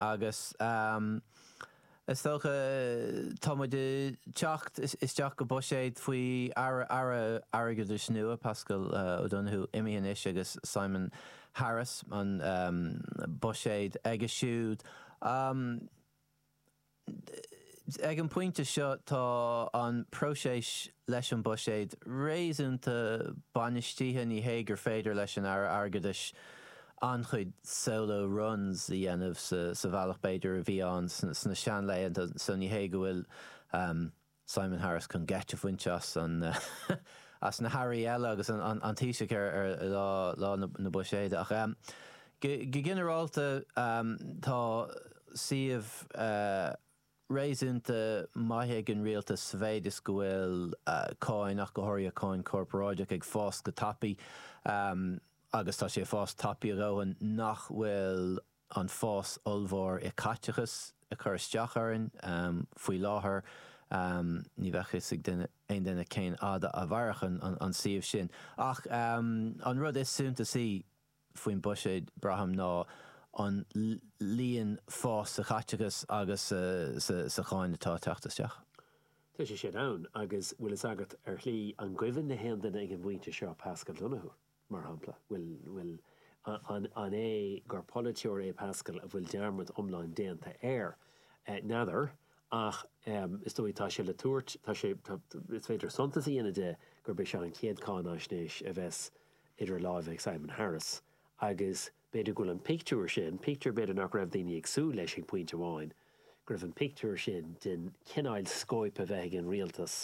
Agus is dócha tá muid ag teacht isteach go buiséad faoi Aire Airgeadais nua, Paschal O'Donohoe imithe anois agus Simon Harris an buiséad aige siúd. Ag an bpointe seo tá an próiseas leis an buiséad réasúnta bainistithe ní hé gur féidir leis an Aire Airgeadais an-chuid solo runs a dhéanamh sa bhealach b'fhéidir a bhí ann sna seanlaethanta so ní hé go bhfuil Simon Harris chun geit a bhaint as na hairí eile agus an Taoisigh ar lá na buiséide ach go ginearálta tá suíomh réasúnta maith ag an rialtas sa mhéid is go bhfuil cáin, ach go háirithe cáin chorparáideach, ag fás go tapaidh, agus tá sé ag fás tapaidh a dhóthain nach bhfuil an fás ollmhór i caiteachas ag cur isteach orainn. Faoi láthair ní bheidh fhios ag aon duine cén fhad a mhairfidh an suíomh sin. Ach an rud is suntasaí faoin buiséad, braithim, ná an líon, fás sa chaiteachas agus sa cháin atá ag teacht isteach. Tá sé sin ann, agus bhfuil fhios agat, ar shlí, an gcuimhin le haon duine ag an bpointe seo Paschal Donohoe, mar shampla? Bhuel, an é gur polaiteoir é Paschal a bhfuil dearmad iomlán déanta air? N'fheadar, ach is dóigh tá sé le tabhairt, tá sé, is féidir suntas a dhéanamh de gurb é seo an chéad cháináisnéis a bheas idir láimhe ag Simon Harris agus b'fhéidir go bhfuil an pictiúr sin, pictiúr b'fhéidir nach raibh daoine ag súil leis ag pointe amháin, go raibh an pictiúr sin den chineál scóip a bheith ag an rialtas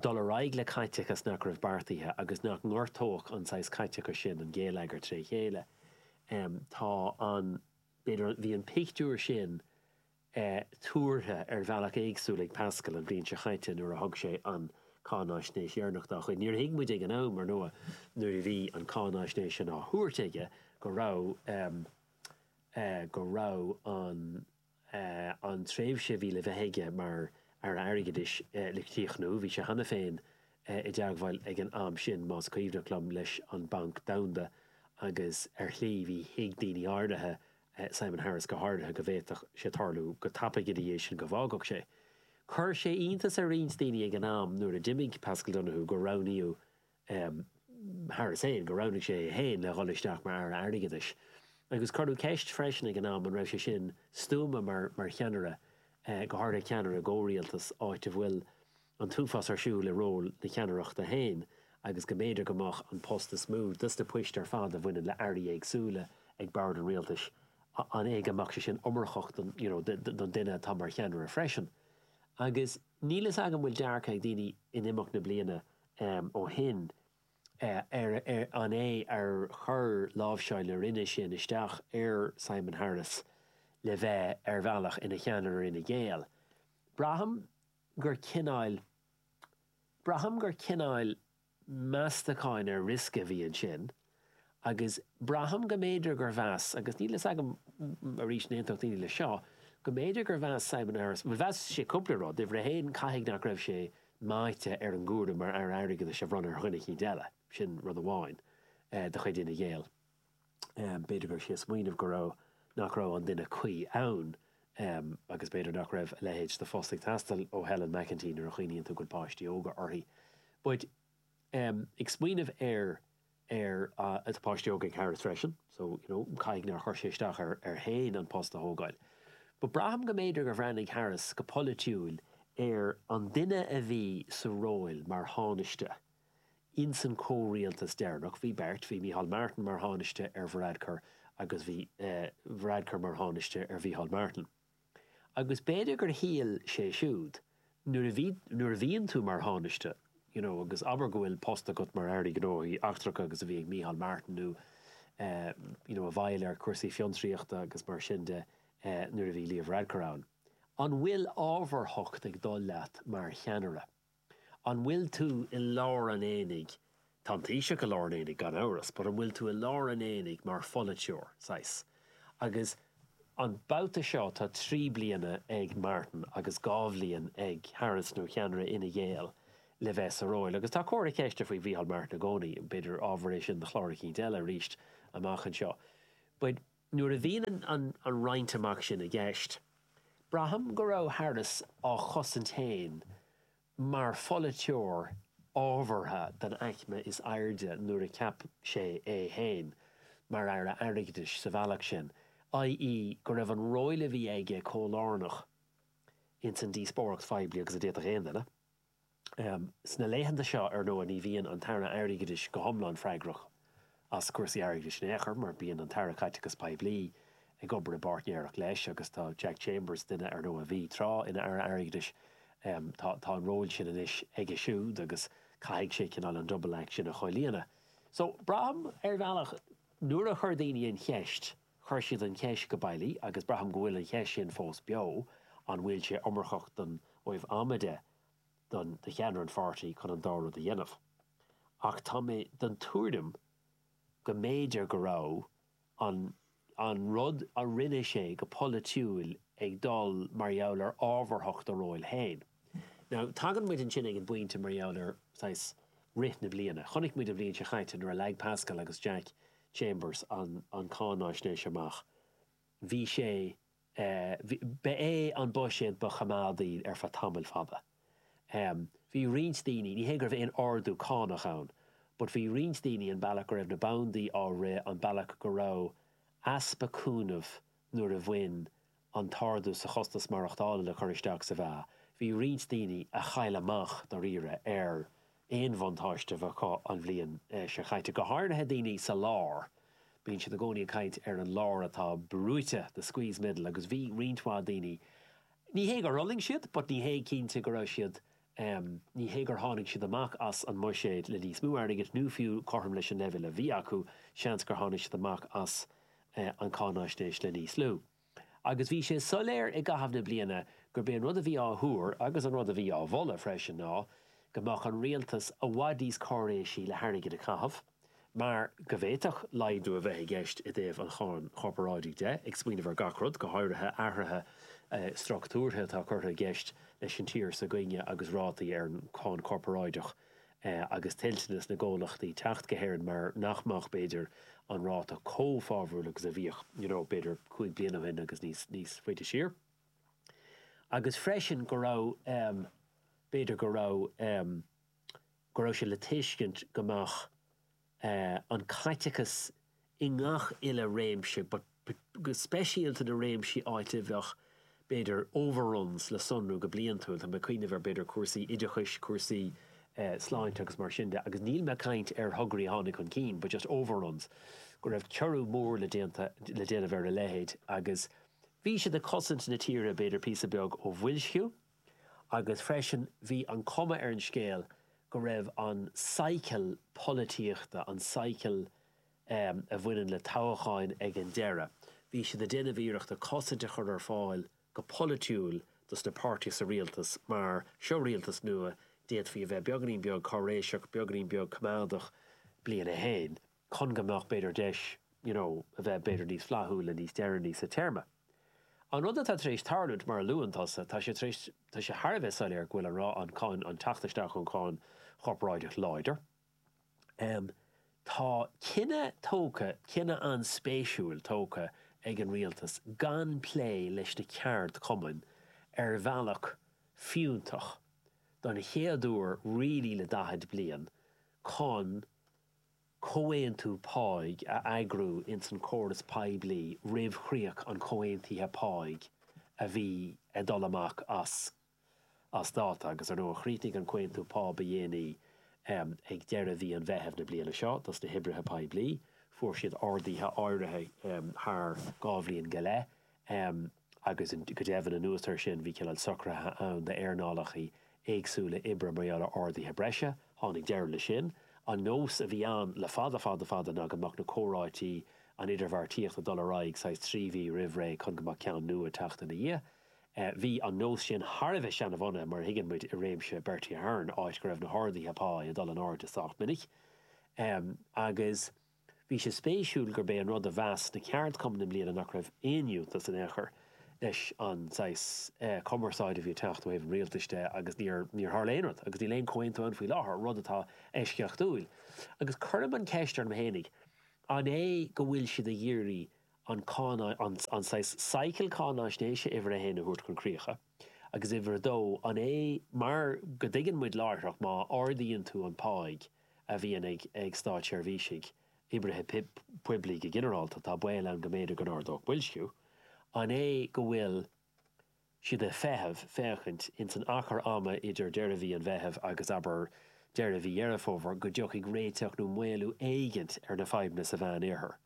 dul ar aghaidh le caiteachas nach raibh beartaithe agus nach ngortódh an saghas caiteachais sin an géilleagar tré chéile. Tá an, b'fhéidir, bhí an pictiúr sin tuartha ar bhealach éagsúil ag Paschal an bhliain seo chaite nuair a thug sé an cáinaisnéis dheireanach dá chuid. Níor thuig muid ag an am, ar ndóigh, nuair a bhí an cáinaisnéis sin á thabhairt aige, go raibh, go raibh an, an tréimhse a bhí le bheith aige mar Aire Airgeadais le críochnú. Bhí sé cheana féin i dteagmháil ag an am sin, más cuimhneach liom, leis an Banc Domhanda agus ar shlí bhí thuig daoine áirithe Simon Harris go háirithe, go bhféadfadh sé tarlú go tapaidh ina dhiaidh sin go bhfágfadh sé. Chuir sé iontas ar roinnt daoine ag an am nuair a d'imigh Paschal Donohoe gur roghnaíodh Harris féin, gur roghnaigh sé é féin le dhul isteach mar Aire Airgeadais. Agus cuireadh ceist freisin ag an am an raibh sé sin stuama mar cheannaire, go háirithe ceannaire i gcomhrialtas, áit a bhfuil, an t-uafás ar siúl i ról na ceannaireachta féin agus go mb'fhéidir go mbeadh an post is mó de dos na poist ar fad a bhaineann le airí éagsúla ag bord an rialtais i.e. go mbeadh sé sin iomarcach don you know don duine atá mar cheannaire freisin agus níl fhios agam bhfuil dearcadh ag daoine in imeacht na mblianta ó shin ar ar an é ar chuir láimhseáil na roinne sin isteach ar Simon Harris le bheith ar bhealach ina cheannaire Fhine Gael braithim gur cineáil, braithim gur cineáil meastacháin ar risk a bhí ansin agus braithim go mb'fhéidir gur mheas, agus níl a fhios agam, arís an aontódh daoine leis seo, go mb'fhéidir gur mheas Simon Harris, bhuel mheas sé cúpla rud, uimhir a haon caithfidh nach raibh sé meáite ar an gcúram mar Aire Airgeadais a bhronnadh ar dhuine eicínt eile, sin rud amháin de chuid Fhine Gael. B'fhéidir go raibh sé ag smaoineamh go raibh, nach raibh an duine cuí ann agus b'fhéidir nach raibh a leithéid de phost ag teastáil ó Helen McEntee nuair a chuimhníonn tú go bhfuil páistí óga aici. But ag smaoineamh ar ar tá páistí óga ag Harris freisin so you know caithfidh nár chuir sé isteach air féin an post a thógáil. But braithim go mb'fhéidir gur bhreathnaigh Harris go polaitiúil ar an duine a bhí sa róil mar thánaiste Ins an comhrialtas deireanach bhí beirt, bhí Micheál Martin mar Thánaiste ar Varadkar agus bhí Varadkar mar Thánaiste ar Mhicheál Martin. Agus b'fhéidir gur shíl sé siúd, nuair a bhí, nuair a bhíonn tú mar Thánaiste, you know, agus abair go bhfuil post agat mar Aire Gnóthaí Eachtracha mar a bhí ag Micheál Martin nó eh, you know, i bhfeighil ar cúrsaí fiontraíochta agus mar sin de nuair a bhí Leo Varadkar ann, an bhfuil ábharthacht ag dul leat mar cheannaire? An bhfuil tú i lár an aonaigh? Tá an Taoiseach i lár an aonaigh gan amhras, but an bhfuil tú i lár an aonaigh mar pholaiteoir, saghas? Agus an babhta seo tá trí bliana ag Martin agus dhá bhliain ag Harris nó cheannaire Fhine Gael le bheith sa róil. Agus tá comhartha ceiste faoi Mhícheál Martin i gcónaí, b'fhéidir ábhar é sin do chlár eicínt eile arís amach anseo. But. Nuair a bhíonn an roinnt amach sin i gceist, braithim go raibh Harris á chosaint féin mar pholaiteoir ábhartha den aicme is airde nuair a cheap sé é féin mar Aire Airgeadais sa bhealach sin, i.e. go raibh an róil a bhí aige chomh lárnach ins an díospóireacht phoiblí agus a d'fhéadfadh aon duine. Sna laethanta seo, ar ndóigh, ní bhíonn an tAire Airgeadais go hiomlán freagrach as cúrsaí airgeadais in aon chor mar bíonn an tAire Caiteachais Poiblí ag obair i bpáirtnéireacht leis agus tá Jack Chambers, duine, ar ndóigh, a bhí tráth ina Aire Airgeadais, tá an ról sin anois aige siúd agus caithfidh sé cineál an double act sin a chomhlíonadh. So, braithim, ar bhealach, nuair a chuir daoine an cheist, Chuir siad an cheist go bailí agus braithim go bhfuil an cheist sin fós beo, an bhfuil sé iomarcach don am atá ag do do cheannaire an pháirtí chun an dá rud a dhéanamh. Ach tá mé den tuairim go mb'fhéidir go raibh an an rud a rinne sé go polaitiúil ag dul mar gheall ar ábharthacht a róil féin. Now tagann muid ansin ag an bpointe mar gheall ar saghas rith na bliana. Chonaic muid an bhliain seo chaite nuair a leag Pascal agus Jack, Chambers an cáinaisnéis amach. Bhí sé, ba é an buiséad ba choimeádaí ar feadh tamaill fhada. Bhí roinnt daoine, ní hé go raibh aon ardú cánach ann, but bhí roinnt daoine an bealach go raibh na bandaí á rith, an bealach go raibh easpa cúnaimh nuair a bhain an t-ardú sa chostas maireachtála le cur isteach sa mheá, bhí roinnt daoine a chaill amach dáiríre ar aon bhuntáiste a bheith acu an bhliain seo caite, go háirithe daoine sa lár. Bíonn siad i gcónaí ag caint ar an lár atá brúite, the squeezed middle, agus bhí roinnt mhaith daoine, ní hé gur fhulaing siad but ní hé cinnte go raibh siad Ní hé gur tháinig siad amach as an mbuiséad le níos mó airgid nó fiú cothrom leis an leibhéal a bhí acu, seans gur tháinig siad amach as an cáinaisnéis le níos lú. Agus bhí sé soiléir i gcaitheamh na bliana gurb é an rud a bhí á thuar, agus an rud a bhí á mholadh freisin, ná go mbeadh an rialtas i bhfad níos cáiréisí le hairgead a chaitheamh. mar go bhféadfadh laghdú a bheith i gceist i dtaobh an cháin chorparáidigh de, ag smaoineamh ar gach rud, go háirithe athruithe structúrtha atá curtha i gceist leis an tír s'againne agus rátaí ar an cháin chorparáideach agus toilteanas na gcomhlachtaí teacht go hÉirinn mar nach mbeadh, b'fhéidir, an ráta chomh fabhrúil agus a bhíodh, you know, b'fhéidir cúig bliana ó shin agus níos faide siar. Agus freisin go raibh, b'fhéidir go raibh, go raibh sé le tuiscint go mbeadh an caiteachas i ngach uile réimse, but speisialta na réimsí áit a bheadh b'fhéidir overruns le sonrú go bliantúil, tá mé ag cuimhneamh ar b'fhéidir cúrsaí oideachais, cúrsaí sláinte agus mar sin de agus níl mé ag caint ar thograí a tháinig chun cinn but just overruns, go raibh teorannú mór le, le déanamh ar a leithéid agus bhí sé ag cosaint na tíre b'fhéidir píosa beag ó bhoilsciú. agus freisin bhí an cuma ar an scéal go raibh an cycle polaitíochta, an cycle a bhaineann le toghcháin ag an deireadh, bhí siad ag déanamh iarrachta cosaint a chur ar fáil go polaitiúil dos na páirtithe sa rialtas mar seo rialtas nua, d'fhéadfaí a bheith beagainín beag cáiréiseach, beagainín beag coimeádach, bliain a haon. chun go mbeadh b'fhéidir deis you know a bheith b'fhéidir níos flaithiúla níos deireanaí sa téarma. An rud atá tar éis tarlúint mar a luann tusa, tá sé tar éis, tá sé thar a bheith soiléir go bhfuil an rá an cáin an teacht isteach an cháin chorparáideach láidir. Em tá cinneadh tógtha, cinneadh an-spéisiúil tógtha ag an rialtas gan plé leis na ceardchumainn ar bhealach fiúntach don chéad uair really le daichead bliain chun comhaontú páigh a eagrú ins an córas poiblí roimh chríoch an chomhaontaithe páigh a bhí ag dul amach as dáta agus, ar ndóigh, chríochnaigh an comhaontú pá ba dhéanaí ag deireadh mhí an Mheithimh na bliana seo dos na hoibrithe poiblí. Fuair siad arduithe áirithe thar dhá bhliain go leith. agus go deimhin anuas ar sin bhí cineál socraithe ann d'earnálacha éagsúla oibre mar gheall ar arduithe breise. Tháinig deireadh le sin. An nós a bhí ann le fada fada fada ná go mbeadh na comhráití, an idirbheartaíocht ag dul ar aghaidh saghas trí mhí roimh ré chun go mbeadh ceann nua ag teacht ina dhiaidh. Bhí an nós sin thar a bheith seanabhunaithe mar a thuigeann muid i réimse Bertie Ahern áit go raibh na harduithe pá ag dul in airde sách minic agus Bhí sé spéisiúil gurb é an rud a mheas na ceardchumainn i mbliana nach raibh aon fhiúntas in aon chor leis an saghas cumarsáide a bhí ag teacht ó thaobh an rialtais de agus níor tharla aon rud agus níl aon comhaontú ann faoi láthair, rud atá eisceachtúil. Agus cuirim an ceist orm fhéinig, an é go bhfuil siad ag iarraidh an cáinaisn saghas cycle cáinaisnéise uimhir a haon a thabhairt chun críocha? Agus uimhir a dó, an é mar go dtuigeann muid láithreach má ardaíonn tú an páigh a bhíonn ag státseirbhísigh, oibrithe poiblí go ginearálta, tá baol ann go mb'fhéidir go n-ardódh boilsciú? An é go bhfuil siad ag feitheamh, féachaint, ins an achar ama idir deireadh mhí an Mheithimh agus, abair, deireadh mhí Dheireadh Fómhair, go dtiocfaidh réiteach nó maolú éigint ar na fadhbanna sa Mheán-Oirthear?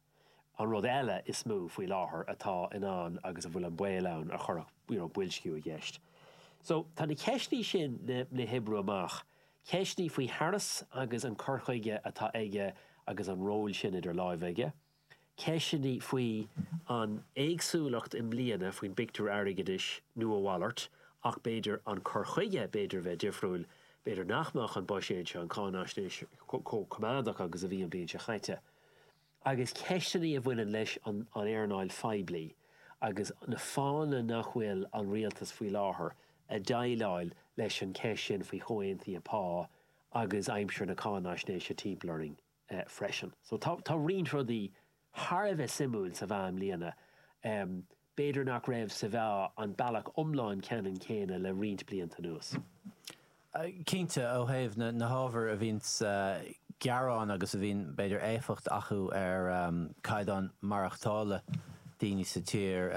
An rud eile is mó faoi láthair atá in ann agus a bhfuil an baol ann a chuirfeadh you know boilsciú i gceist so tá na ceisteanna sin le hoibriú amach, ceisteanna faoi Harris agus an cur chuige atá aige agus an ról sin idir láimhe aige, ceisteanna faoi an éagsúlacht i mbliana faoin bpictiúr airgeadais nó a mhalairt ach b'fhéidir an cur chuige b'fhéidir a bheith difriúil, b'fhéidir nach mbeadh an buiséad seo, an cháinaisnéis, chomh coimeádach agus a bhí an bhliain seo chaite. agus ceisteanna a bhaineann leis an earnáil phoiblí agus na fáthanna nach bhfuil an rialtas faoi láthair ag déileáil leis an cheist sin faoi chomhaontuithe pá agus aimsir na cáinaisnéise timpeall orainn freisin. So tá roinnt rudaí thar a bheith suimiúil sa mheá i mbliana. B'fhéidir nach raibh sa mheá ar an bealach iomlán ceannann céanna le roinnt blianta anuas. Cinnte, ó thaobh na hábhair a bhíonn gearáin agus a bhíonn, b'fhéidir, éifeacht acu ar caighdeán maireachtála daoine sa tír,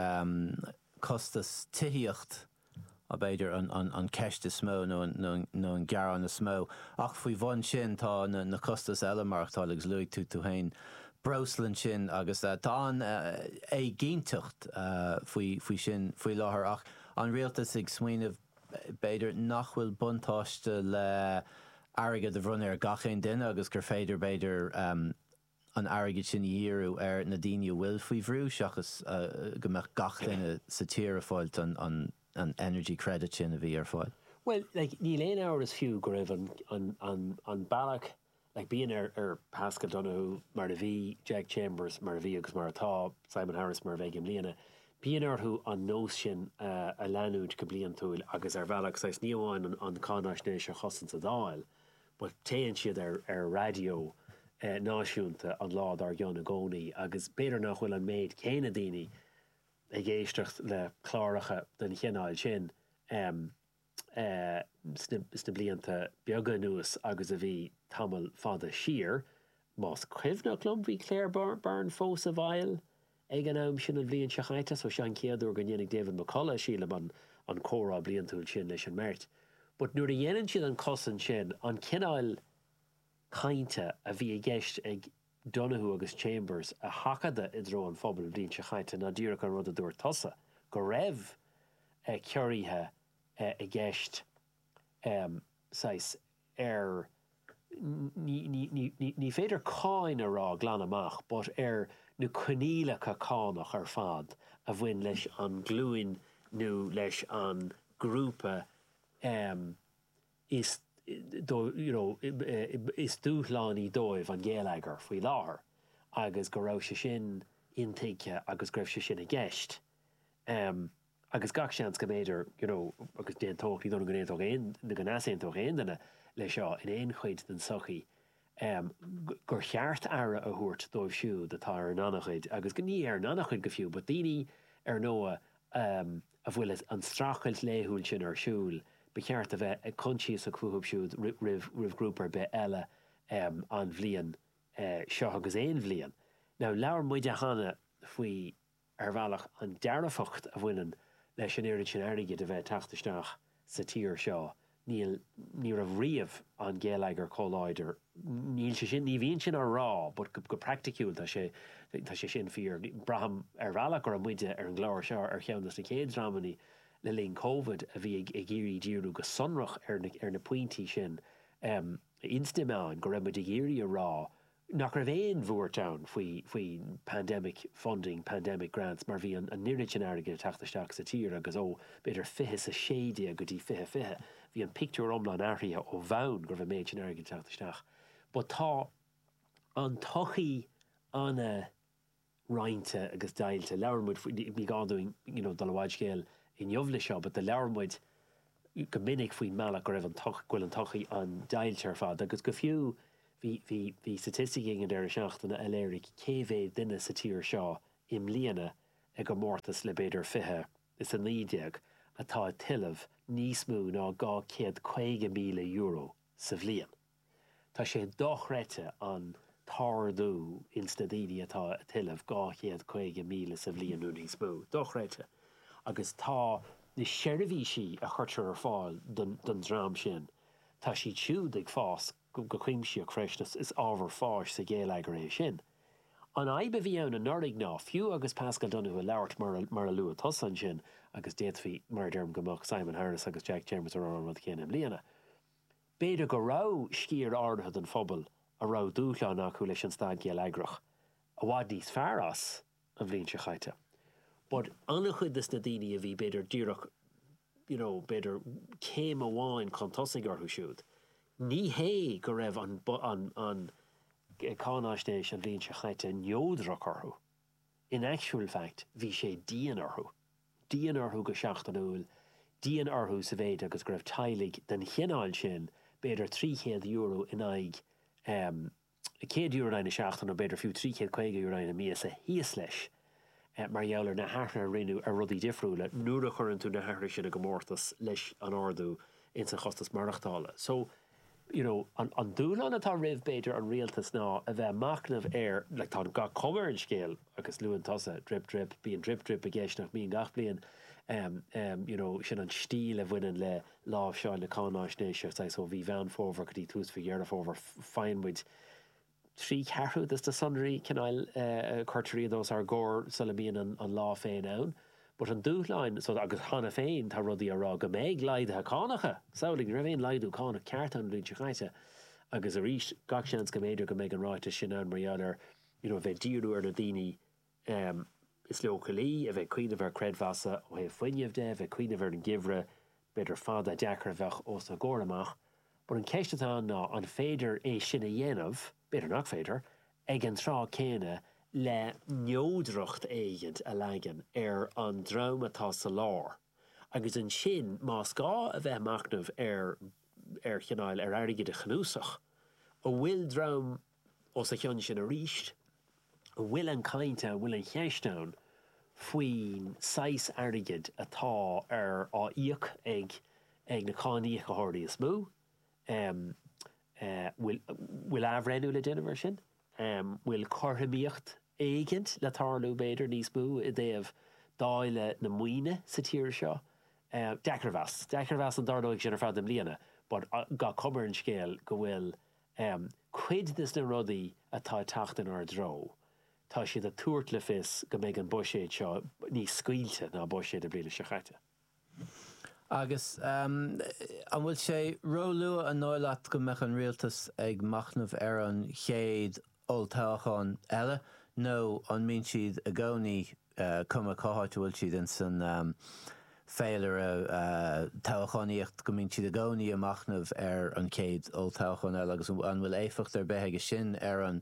costas tithíocht, b'fhéidir an cheist is mó nó an gearán is mó. Ach faoi bhun sin tá na costais eile maireachtála agus luaigh tú féin breosla ansin agus tá an-éiginnteacht faoi sin faoi láthair ach an rialtas ag smaoineamh b'fhéidir nach bhfuil buntáiste le airgead a bhronnadh ar gach aon duine agus gur féidir b'fhéidir an airgead sin a dhíriú ar na daoine a bhfuil faoi bhrú seachas go mbeadh gach duine sa tír ag fáilt an energy credit sin a bhí ar fáil. Bhuel, níl aon amhras fiú go raibh an bealach, bíonn ar Paschal Donohoe, mar a bhí, Jack Chambers, mar a bhí agus mar atá, Simon Harris, mar a bheidh i mbliana, bíonn orthu an nós sin a leanúint go bliantúil agus ar bhealach, saghas, ní amháin an cáinaisnéis a chosaint sa Dáil, But téann siad ar raidió náisiúnta an lá dár gcionn i gcónaí agus b'fhéidir nach bhfuil an méid céanna daoine ag éisteacht le cláracha den chineál sin sna blianta beaga anuas agus a bhí tamall fada siar. Más cuimhneach liom bhí Claire Byrne fós i bhfeighil Ag an am sin an bhliain seo chaite, so sé an chéad uair go ndéanfaidh David McCullagh, sílim, an comhrá bliantúil sin leis an mbeirt. But nuair a dhéanann siad an cosaint sin, an cineáil cainte a bhí i gceist ag Donohoe agus Chambers a sheachadadh i dtreo an phobail an bhliain seo chaite ná díreach an rud a dúirt tusa, go raibh ciorruithe i gceist, saghas, ar ní féidir cáin a rá glan amach but ar na coinníollacha cánach ar fad a bhain leis an nglúin nó leis an ngrúpa is you know is dúshlánaí dóibh an geilleagar faoi láthair agus go raibh sé sin intuigthe agus go raibh sé sin i gceist. agus gach seans go mb'fhéidir you know agus d'aontódh, ní dóigh liom go n-aontódh aon, nó go n-easaontódh aon duine leis seo in aon chuid den sochaí, em, gur cheart aire a thabhairt dóibh siúd atá ar an ngannchuid agus go, ní ar an ngannchuid go fiú but daoine ar ndóigh, em, a bhfuil an streachailt laethúil sin ar siúl, ba cheart a bheith coinsiasach fúthu siúd roimh, roimh ghrúpa ar bith eile, em, an bhliain, eh, seo agus aon bhliain. Now labhair muide cheana faoi, ar bhealach, an dearfacht a bhaineann leis an oiread sin airgid a bheith ag teacht isteach sa tír seo, níl, ní raibh riamh an géilleagar chomh láidir, ní hé, ní bhíonn sin á rá but go, go praiticiúil tá sé, tá sé sin fíor. Braithim ar bhealach go raibh muide ar an gclár seo ar cheann de na chéad dreamanna le linn Covid a bhí ag, ag iarraidh díriú go sonrach ar na, ar na pointí sin. Ins an méid go raibh muid ag iarraidh a rá nach raibh aon bhuairt ann faoi pandemic funding, pandemic grants mar bhí an oiread sin airgid ag teacht isteach sa tír agus ó b'fhéidir fiche is a sé déag go dtí fiche fiche bhí an pictiúr iomlán athraithe ó bhonn go raibh an méid sin airgid ag teacht isteach but tá an tsochaí an- roinnte agus deighilte. Labhair muid faoi, ní gá dúinn you know dul i bhfad scéal inniu le seo but the labhair muid go minic faoin mbealach go raibh an go bhfuil an tsochaí an-deighilte ar fad agus go fiú bhí bhí bhí staitisticí ag an deireadh seachtaine a léirigh cé mhéad duine sa tír seo i mbliana i gcomórtas le b'fhéidir fiche is a naoi déag atá ag tuilleamh níos mó ná dhá chéad caoga míle euro sa bhliain. Tá sé dochreidte an t-ardú ins na daoine atá ag tuilleamh dhá chéad caoga míle sa bhliain nó níos mó. Dochreidte. Agus tá na seirbhísí a chuirtear ar fáil don don dream sin, tá siad siúd ag fás go go cuimsitheach freisin. Is ábhar fáis sa ghéilleagar é sin. An fhadhb a bhí ann anuraidh ná, fiú agus Paschal Donohoe ag labhairt mar a mar a luaigh tusa ansin, agus d'fhéadfaí, mar a deirim, go mbeadh Simon Harris agus Jack Chambers ag rá an rud chéanna i mbliana, B'fhéidir go raibh sciar áirithe den phobal a raibh dúshláin acu leis an staid gheilleagrach i bhfad níos fearr as an bhliain seo chaite but an-chuid de na daoine a bhí b'fhéidir díreach you know b'fhéidir céim amháin chun tosaigh orthu siúd ní hé go raibh an cáináisnéis an bhliain seo chaite neodrach orthu. In actual fact bhí sé dian orthu. Dian orthu go seachtainiúil, dian orthu sa mhéid agus go raibh teaghlaigh den chineál sin, b'fhéidir €300 in aghaidh em €100 in aghaidh na seachtaine nó b'fhéidir fiú €350 in aghaidh na míosa thíos leis mar gheall ar na hathruithe a rinneadh ar rudaí difriúla nuair a chuireann tú na hathruithe sin i gcomórtas leis an ardú ins an chostas maireachtála. So. you know an dúshlán atá roimh b'fhéidir an rialtas ná a bheith ag machnamh ar like tá gach cuma ar an scéal agus luann tusa drip drip bíonn drip drip i gceist nach mbíonn gach bliain um um you know sin an stíl a bhaineann le láimhseáil na cáináisnéise saghas ó mhí Mheán Fómhair go dtí tús mhí Dheireadh Fómhair faigheann muid trí cheathrú de na sonraí cineál cuirtear iad os ár gcomhair sula mbíonn an lá féin ann. But an dúshlán so, agus cheana féin tá rudaí á rá go mbeidh laghduithe cánacha! Samhlaigh, ní raibh aon laghdú cánach ceart ann an bhliain seo chaite agus arís gach seans go mb'fhéidir go mbeidh an ráiteas sin ann mar gheall ar, you know, bheith díriú ar na daoine is leochailí a bheith ag cuimhneamh ar chreidmheasanna ó thaobh fuinneamh de, a bheith ag cuimhneamh ar an ngeimhreadh b'fhéidir fada deacair a bheadh os a gcomhair amach. But an ceist atá ann ná an féidir é sin a dhéanamh, b'fhéidir nach féidir, ag an tráth céanna le neodracht éigint a leagan ar an dream atá sa lár agus ansin más gá a bheith ag machnamh ar cineál ar airgead a chnuasach a bhfuil dream Os a chionn sin arís, an bhfuil an cineál, bhfuil an cheist ann faoin saghas airgid atá á íoc ag ag na cáiníocóirí is mó? Bhfuil bhfuil athbhreithniú le déanamh ar sin? Bhfuil cothromaíocht éigint le tarlú, b'fhéidir, níos mó i dtaobh dáileadh na maoine sa tír seo? Deacair a mheas. Deacair a mheas an dtarlóidh sin i bhfad i mbliana, but is cuma an scéal go bhfuil Um cuid des na rudaí atá ag teacht inár dtreo, tá siad ag tabhairt le fios go mbeidh an buiséad seo níos scaoilte ná buiséad na bliana seo caite. Agus an bhfuil sé róluath an dóigh leat go mbeadh an Rialtas ag machnamh ar an chéad olltoghchán eile nó an mbíonn siad i gcónaí, cuma cá háit a bhfuil siad in san féilire toghchánaíochta, go mbíonn siad i gcónaí ag machnamh ar an chéad olltoghchán eile agus an bhfuil éifeacht ar bith aige sin ar an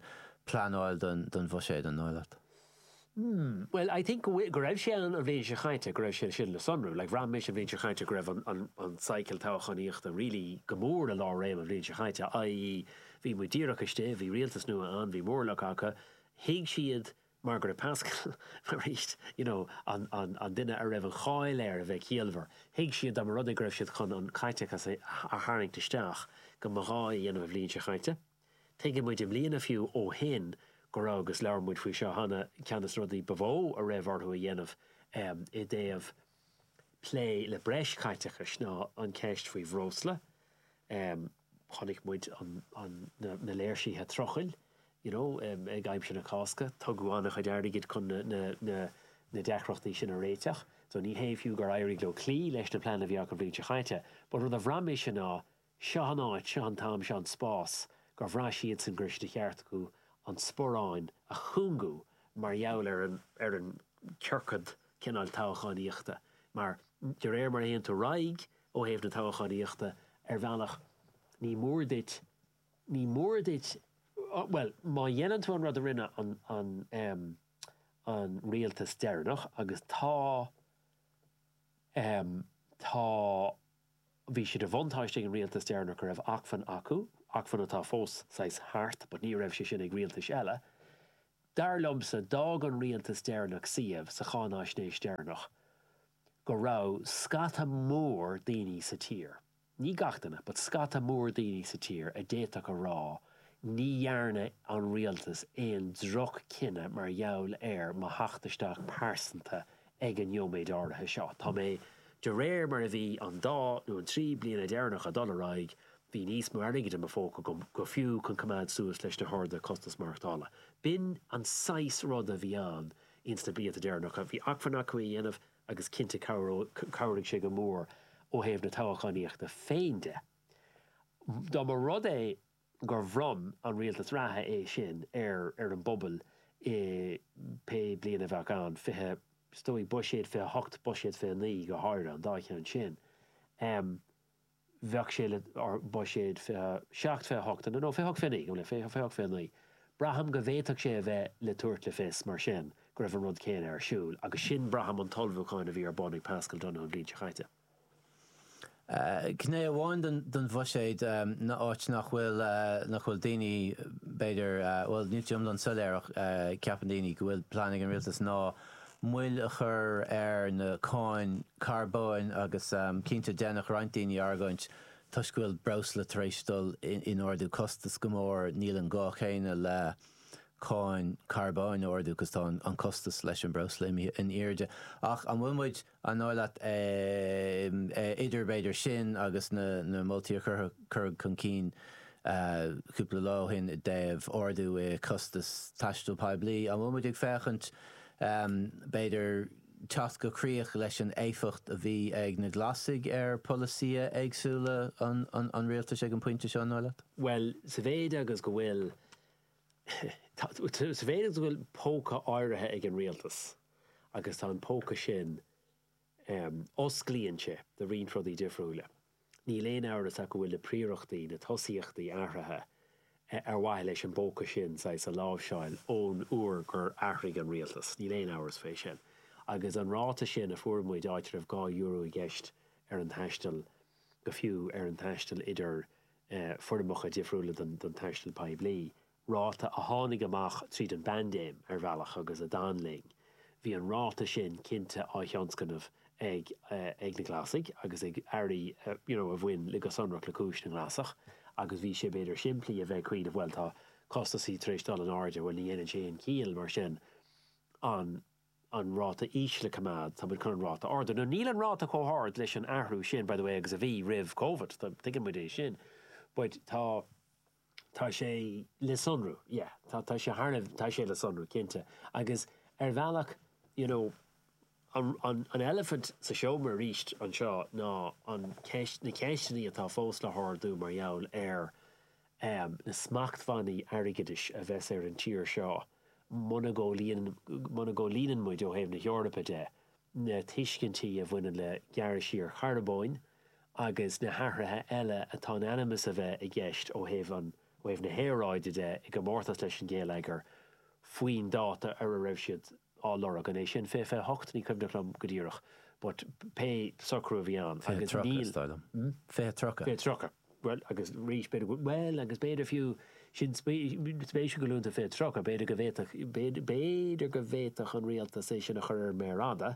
pleanáil don bhuiséad, an dóigh leat? Mmm bhuel I think go bhfuil, go raibh sé ann an bhliain seo chaite, go raibh sé sin le sonrú. Like bhraith mise an bhliain seo chaite go raibh an, an, an cycle toghchánaíochta really go mór i lánréim an bhliain seo chaite, i.e. bhí muid díreach istigh, bhí rialtas nua ann, bhí móramh acu, thuig siad mar go raibh Paschal arís, you know, an, an, an duine a raibh an cháil air a bheith ciallmhar, thuig siad dá mba rud é go raibh siad chun an caiteachas a, a tharraingt isteach go mba ghá é a dhéanamh an bhliain seo chaite. Tuigeann muid i mbliana fiú ó shin go raibh, agus labhair muid faoi seo cheana, ceann des na rudaí ba mhó a raibh orthu a dhéanamh i dtaobh plé le breis chaiteachais ná an cheist faoi bhreosla. Chonaic muid na léirsithe trucailí you know ag aimsir na Cásca. Tugadh an-chuid airgid chun na deacrachtaí sin a réiteach. So ní hé fiú gur éirigh leo cloí leis na pleananna a bhí acu an bhliain seo chaite but rud a bhraith mise ná Seo an áit, seo an t-am, seo an spás gur bhraith siadsan gur cheart dóibh an sparán a chúngú mar gheall ar an, ar an ciorcal cineál toghchánaíochta mar de réir mar a théann tú ar aghaidh ó thaobh na toghchánaíochta ar bhealach ní mór duit, ní mór duit, bhuel má dhéanann tú an rud a rinne an, an, an rialtas deireanach agus tá, tá. Bhí sé de bhuntáiste ag an rialtas deireanach go raibh acmhainn acu, acmhainn atá fós saghas thart but ní raibh sé sin ag rialtais eile. Dar liomsa, d'fhág an rialtas deireanach suíomh sa cháináisnéis deireanach go raibh scata mór daoine sa tír, ní gach duine, but scata mór daoine sa tír a d'fhéadfadh a rá ní dhearna an rialtas aon droch-chinneadh mar gheall ar mo theacht isteach pearsanta Ag an nóiméad áirithe seo, de réir mar a bhí an dá nó an trí bliana deireanach ag dul ar aghaidh, bhí níos mó airgid i mo phóca go fiú chun coimeád suas leis na hardú costas maireachtála. B'in an saghas ruda a bhí ann ins na blianta deireanacha. Bhí acmhainn acu é a dhéanamh agus cinnte chabhraigh sé go mór ó thaobh na toghachánaíochta féin de. Dá mba rud é gur bhronn an rialtas reatha é sin ar ar an bpobal i pé bliain a bheadh ann, fiche, is dóigh, buiséad fiche hocht, buiséad fiche naoi go háirithe, an dá cheann sin. Bheadh sé le, or buiséad fiche seacht, fiche hocht, no, fiche hocht fiche naoi, gabh mo leithscéal, fiche hocht fiche naoi. Braithim go bhféadfadh sé a bheith le tabhairt le fios, mar sin, go raibh an rud céanna ar siúl agus sin, braithim, an t-ullmhúchán a bhí ar bun ag Paschal Donohoe an bhliain seo chaite. Gné amháin den bhuiséad áit nach bhfuil nach bhfuil daoine b'fhéidir bhuel níl sé iomlán soiléir ach ceapann daoine go bhfuil plean ag an rialtas ná moill a chur ar na cáin carbóin agus cinnte déanfadh roinnt daoine argóint toisc go bhfuil breosla tar éis dul in ardú costas go mór níl an gá céanna le cáin carbóin a ardú 'cause tá an costas leis an breosla imithe in airde ach an bhfuil muid An dóigh leat, idir b'fhéidir sin agus na moltaí a cuireadh chun cinn cúpla lá ó shin i dtaobh ardú i costas taistil poiblí, an bhfuil muid ag féachaint b'fhéidir teacht go críoch leis an éifeacht a bhí ag na Glasaigh ar polasaithe éagsúla an rialtais ag an bpointe seo, an dóigh leat? Bhuel, sa mhéid agus go bhfuil Sa mhéid go bhfuil póca áirithe ag an rialtas agus tá an póca sin, osclaíonn sé do roinnt rudaí difriúla. Níl aon amhras ach go bhfuil na príorachtaí, na tosaíochtaí athraithe ar mhaithe leis an bpóca sin, saghas, a láimhseáil ón uair gur athraigh an rialtas. Níl aon amhras fé sin. Agus an ráta sin a fuair muid, áit a raibh dhá euro i gceist ar an taisteal, go fiú ar an taisteal idir foirmeacha difriúla den taisteal poiblí, ráta a tháinig amach tríd an bpaindéim ar bhealach agus a d'fhan linn. Bhí an ráta sin cinnte á thionscnamh ag ag na Glasaigh agus ag airí you know a bhain le go sonrach le cúis na nGlasach agus bhí sé b'fhéidir simplí a bheith ag cuimhneamh bhuel tá costasaí tar éis dul in airde bhuel ní dhéanann sé aon chiall mar sin an an ráta íseal a coimeád, tá muid ag chun an ráta a ardú. Now níl an ráta chomh hard leis an athrú sin, by the way, agus a bhí roimh Covid, tuigeann muid é sin, but tá, tá sé le sonrú, yeah, tá, tá sé thar a, tá sé le sonrú, cinnte. Agus ar bhealach, you know, an, an, an eilifint sa seomra arís anseo ná an cheist, na ceisteannaí atá fós le hardú mar gheall ar, na smachtbhannaí airgeadais a bheas ar an tír seo muna gcomhlíonann muid, ó thaobh na hEorpa de, na tuiscintí a bhaineann le gearradh siar charbóin agus na hathruithe eile atá in ainm is a bheith i gceist ó thaobh na haeráide de i gcomórtas leis an ngeilleagar faoin dáta ar a raibh siad á lorg. An é sin 2028? Ní cuimhneach liom go díreach but pé socrú a bhí ann agus níl. 20:30 is dóigh liom. Hm? 20:30. 20:30. Bhuel agus arís b'fhéidir go bhuel agus b'fhéidir fiú sin spéisiúil go luann tú 20:30 b'fhéidir go bhféadfadh b'fhéidir go bhféadfadh an Rialtas é sin a chur ar an mhéar fhada,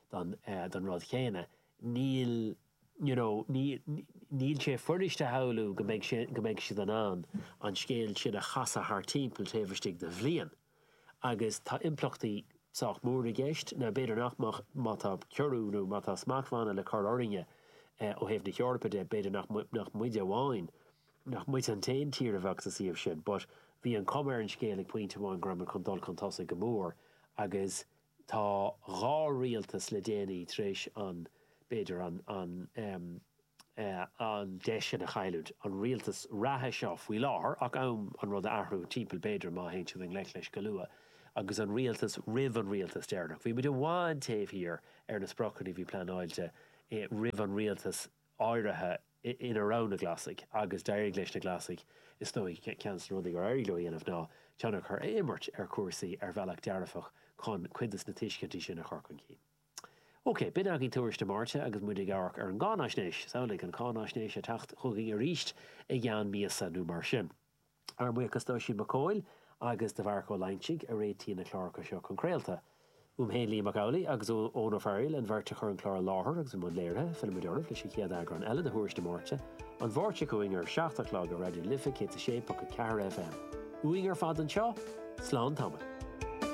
don don rud céanna. Níl you know níl níl sé fuirist a shamhlú go mbeidh sé go mbeidh siad in ann an scéal sin a chasadh thar timpeall taobh istigh de bhliain agus tá impleachtaí sách mór i gceist. Now b'fhéidir nach mbeadh má tá ciorrú nó má tá smachtbhanna le cur orainne ó thaobh na hEorpa de b'fhéidir nach nach muide amháin nach muid an t-aon tír a bheadh sa suíomh sin but bhí an chuma ar an scéal ag pointe amháin go raibh muid chun dul chun tosaigh go mór agus Tá dhá rialtas le déanaí tar éis an, b'fhéidir, an, an em, eh, an deis sin a chailliúint, an rialtas reatha seo faoi láthair, ach am an rud a athrú timpeall b'fhéidir má théann siad i ngleic leis go luath, agus an rialtas roimh an rialtas deireanach. Bhí muid i bhfad taobh thiar ar na spriocanna a bhí pleanáilte i, roimh an rialtas eh, áirithe ina raibh na Glasaigh agus d'éirigh leis na Glasaigh, is dóigh, ceann de na rudaí gur éirigh leo a dhéanamh ná tionchar a chur ar imirt ar chúrsaí ar bhealach dearfach chun cuid de na tuiscintí sin a chur chun cinn. OK, b'in agaibh Tuairisc na Máirte agus muid ag amharc ar an gcáinaisnéis. Is amhlaidh an cháinaisnéis ag teacht chugainn arís i gceann míosa nó mar sin. Ár mbuíochas d'Oisín Mac Cóil agus do Mharc Ó Loingsigh a réitigh na cláracha seo chun craolta. Uaim féin Liam Mac Amhlaigh agus ó Eoghan Ó Fearghail, an bheirt a chuir an clár i láthair agus i mbun léirithe, fillimid oraibh leis an chéad eagrán eile de Thuairisc na Máirte, an Mháirt seo chugainn ar a seacht a chlog ar Raidió Life 106.4 FM. Uainn ar fad anseo, slán tamaill.